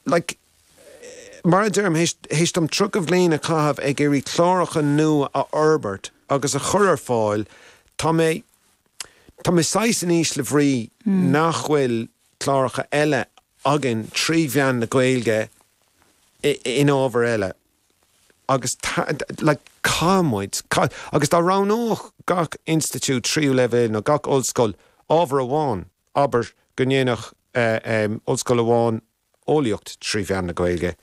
like, mar a deirim, théis dom tríocha bhliain a chaitheamh ag iarraidh cláracha nua a fhorbairt agus a chur ar fáil, tá mé, tá mé saghas in ísle bhrí nach bhfuil cláracha eile againn trí mheán na Gaeilge in ábhair eile. Agus, like, caithfidh muid, caithfidh, agus dá roghnódh gach institiúid tríú leibhéal nó gach ollscoil ábhar amháin, Abair go ndéanfadh ollscoil amháin eolaíocht trí mheán na Gaeilge,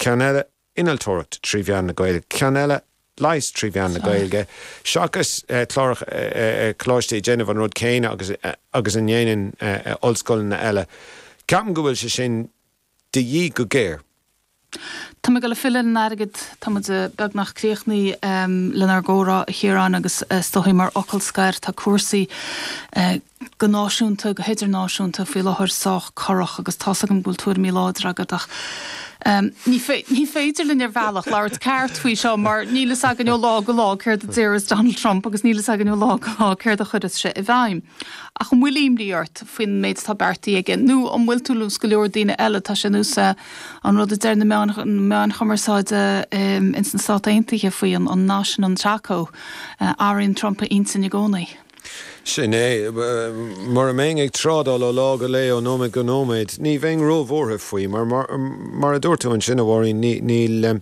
ceann eile innealtóireacht trí mheán na Gaeilge, ceann eile leigheas trí mheán na Gaeilge, seachas cláracha coláiste ag déanamh an rud céanna agus a ndéanann ollscoileanna eile. Ceapaim go bhfuil sé sin de dhíth go géar. Tá mé ag dul ag filleadh ar an airgead. Tá muid beagnach críochnaithe lenár gcomhrá, a Chiaráin, agus is dóigh, mar fhocal scoir, tá cúrsaí, go náisiúnta, go hidirnáisiúnta, faoi láthair sách corrach agus tá's agam go bhfuil tuairimí láidre agat ach ní féidir linn, ar bhealach, labhairt ceart faoi seo mar níl fhios againn ó lá go lá céard a déarfas Donald Trump agus níl fhios againn ó lá go lá céard a chuirfeas sé i bhfeidhm. Ach an bhfuil imní ort faoin méid atá beartaithe aige? Nó an bhfuil tú, is go leor daoine eile, tá sé anuas ar an rud a deir na meáin, na meáin chumarsáide ins na Stáit Aontaithe faoi, an nath sin, an TACO. Athraíonn Trump a intinn i gcónaí. Sin é. Mura mbeinn ag trádáil ó lá go lae, ó nóiméad go nóiméad, ní bheinn róbhuartha faoi, mar, mar a dúirt tú ansin, a Mháirín, níl, níl,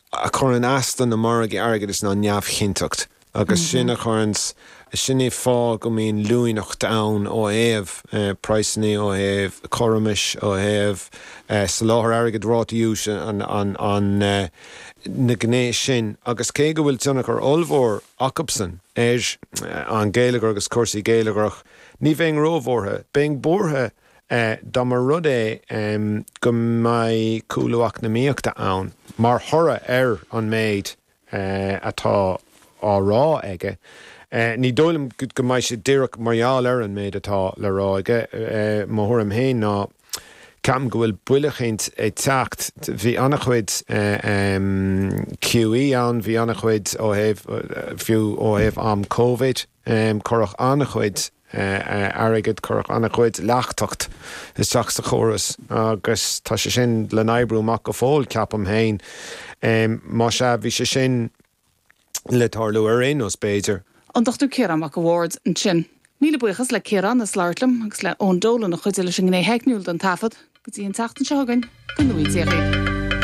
a chuireann as do na margaí airgeadais ná neamhchinnteacht agus sin a chuireann sin é fáth go mbíonn luaineacht ann ó thaobh praghsanna, ó thaobh cothromais, ó thaobh soláthar airgid, rátaí úis an na gné sin agus cé go bhfuil tionchar ollmhór acubsan ar an geilleagar agus cúrsaí geilleagrach, ní bheinn róbhuartha. Beinn buartha Dá mba rud é go mbeidh cúlú eacnamaíochta ann mar thoradh ar an méid atá á rá aige, ní dóigh liom go mbeidh sé díreach mar gheall ar an méid atá le rá aige. Mo thuairim féin ná ceapaim go bhfuil buille eicínt ag teacht. Bhí an-chuid QE ann, bhí an-chuid ó thaobh, fiú ó thaobh am Covid. Em, cuireadh an-chuid, eh, eh, airgead, cuireadh an-chuid leachtacht isteach sa chóras agus tá sé sin le n-oibriú amach go fóill, ceapaim féin. Em, más ea, bhí sé sin le tarlú ar aon nós, b'fhéidir. An Dr. Ciarán Mac a' Bhaird ansin. Míle buíochas le Ciarán as labhairt liom agus le Eoin Dolan a chuidigh leis an ngné theicniúil den taifead. Go dtí an tseachtain seo chugainn, go ngnóthaí Dia dhaoibh.